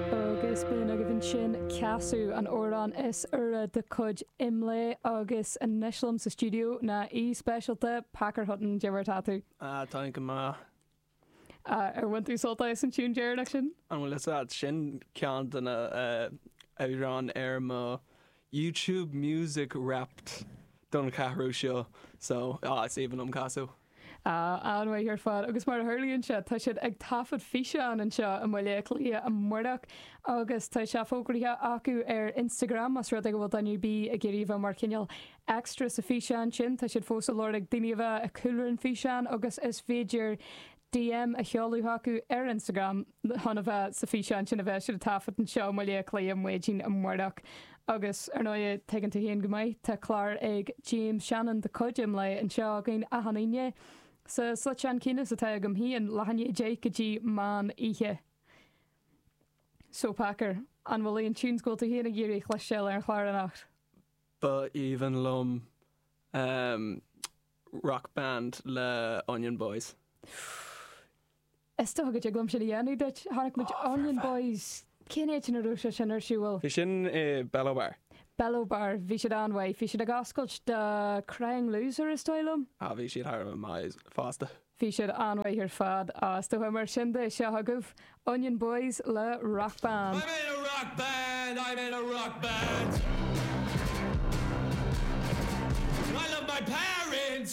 agus b'in agaibh ansin Casadh, an amhrán is úire de chuid Imlé agus anois liom sa stiúideo ná aoi speisialta, Packer Hutton, cad é mar atá tú. Ah, táim go maith. Ah, ar bhain tú sult as an tiúin deireanach sin? An bhfuil fhios agat, sin ceann de na amhráin ar mo YouTube Music Wrapped don cheathrú seo, so, ah, is aoibhinn liom Casadh. Á, an-mhaith ar fad, agus mar a tharlaíonn sé, tá siad ag taifead físeán anseo i mBaile Átha Cliath amáireach agus tá sé fógraithe acu ar Instagram, más rud é go bhfuil daoine ar bith ag iarraidh a bheith mar chineál extra sa físeán sin, tá siad fós ag lorg daoine a bheith i cúlra an físeáin agus is féidir DM a sheoladh chucu ar Instagram. chun a bheith sa físeán sin a bheas siad ag taifead anseo, i mBaile Átha Cliath, maidin amáireach. Agus, ar ndóigh, tuigeann tú féin go maith, tá clár ag James Shannon de chuid Imlé anseo againn achan Aoine. Sa slot am céanna is atá agam féin, leath i ndiaidh a deich go dtí meán oíche. So, Packer, an bhfuil aon tunes go bhfuil tú féin ag iarraidh a chloisteáil ar an chlár anocht? Ba aoibhinn liom Rock Band le Onion Boys. Is dócha go dtig liom sin a dhéanamh duit. Chonaic muid Onion Boys. Cén áit a raibh sé sin ar siubhal? Bhí sin i Bello Bar. Bello Bar. Bhí siad an-mhaith. Bhí siad ag oscailt do Crying Loser is dóigh liom. Ah bhí siad thar a bheith maith fosta. Bhí siad an-mhaith ar fad. Ah is dócha mar sin de. Seo agaibh Onion Boys le Rock Band. I'm in a rock band, I'm in a rock band. I love my parents.